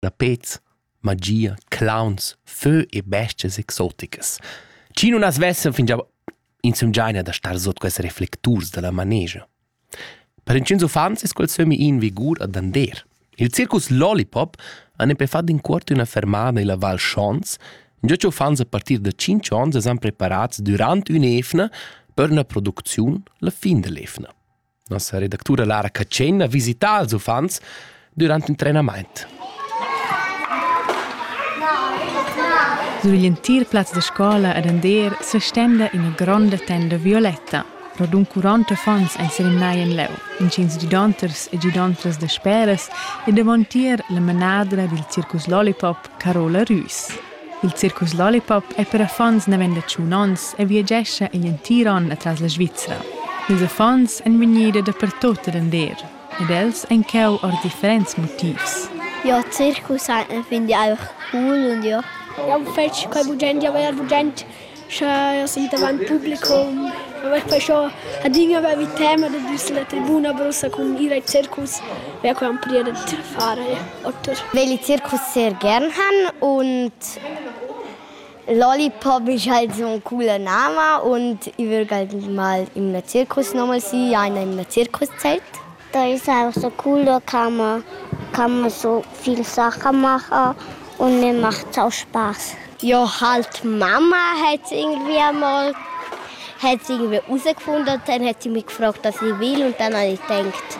da pez, magia, clowns, fö e bestias exoticas. Chi nun as vessan fingià insumgiaina da star sot quels reflecturs da la manegia. Per inchüns uffants es quel sömmi in vigur a dander. Il circus Lollipop han per far d'incuort üna fermada illa Val Schons, già che uffants a partir da 5 ons es han preparats durant ün'evna per üna producziun la fin dell'evna. Nossa redactura Lara Catschena visita ils uffants durant il trenament. Sur l'entir plaz da scola ed Ander s'estenda ina gronda tenda violetta. Radun 40 uffants ein serimnai en leu, intgins gidanters e gidantras da speras e davontier la manadra dil circus Lollipop Carola Rüs. Il circus Lollipop è per affons naven da tschun onns e viagescha igl entir onn atras la Svizra. Ils affons èn vegnida dapertut denter ed els ein cheu ord differents motivs. Ja, Zirkus fin di aur cool und ja. Jau fetsch quai bugend, jau vegl bugend Scha els i davant publicum, vair quai scho adina vair vid tema da düser la tribuna bassa cun ir ai circus, vair co han prier dad far oter. Vegl il circus Sergern han und lollipop isch halt so coole Name und i vögl halt mal in la circus nomal si, einer in la circuszeit. Teis house a culla cama, cama so viel sacha macher und mir macht sau Spaß. Ja, halt Mama hat irgendwie einmal hat sie irgendwie herausgefunden, dann hat sie mich gefragt, was ich will und dann habe ich gedacht,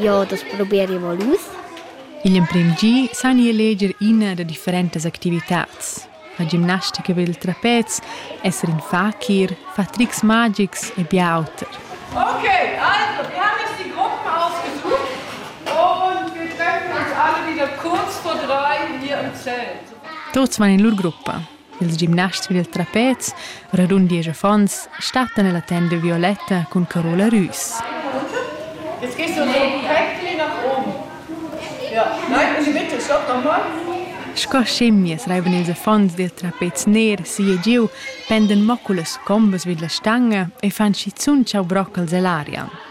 ja, das probiere ich mal aus. Igl emprem gi san jeu leger ina da differentas activitats. fa gimnastica per il trapez, esser in fakir, far trics magics e bia auter. Okay, also wir haben jetzt die Gruppen ausgesucht und wir treffen uns alle wieder kurz vor drei hier im Zelt. Tuts van in lur gruppa. Ils gimnasts per il trapez Radun diesch affons stattan ella tenda de violetta cun Carola Rüs. Jetzt gehst du perfekt nach oben. Ja, nein, Uli, bitte, stopp nochmal. Sco schimmias reivan ils affons dil trapez ner si e giu, penden mo cullas combas vid la stanga e fan schizun tschau broccals ell'aria.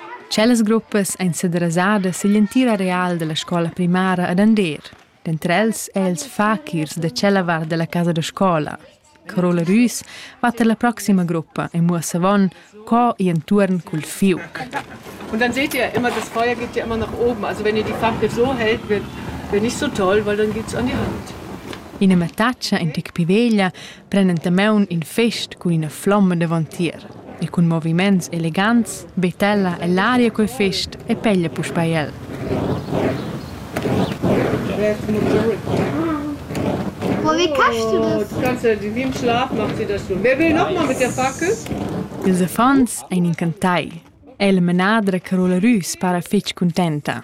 Tschellas gruppas ein sederasadas sigl entir areal dalla scola primara ad Andeer. Denter els ei els fakirs da tschella vart dalla casa da scola. Carola Rüs va per la proxima gruppa e muossa avon co ir entuorn cul fiuc. Und dann seht ihr immer, das Feuer geht ja immer nach oben. Also wenn ihr die Fackel so hält, wird, wird nicht so toll, weil dann geht's an die Hand. Ina mattaccia in tec piveglia pren entamaun in fest cun ina flomma davantier e cun moviments elegants betella ell'aria quel fest e peglia puspei el. Aber wie kannst du das? Du kannst in dem Schlaf macht sie das so. Wer will nochmal mit der Fackel? Ils affons ein encantai. El menadra Carola Rüs para fetg contenta.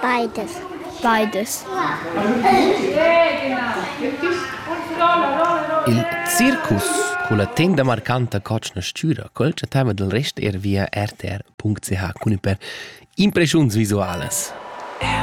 Beides. Beides. Il circus culla tenda marcanta cotschna stüra quel chattava del rest er via rtr.ch cun per impreschiuns visualas.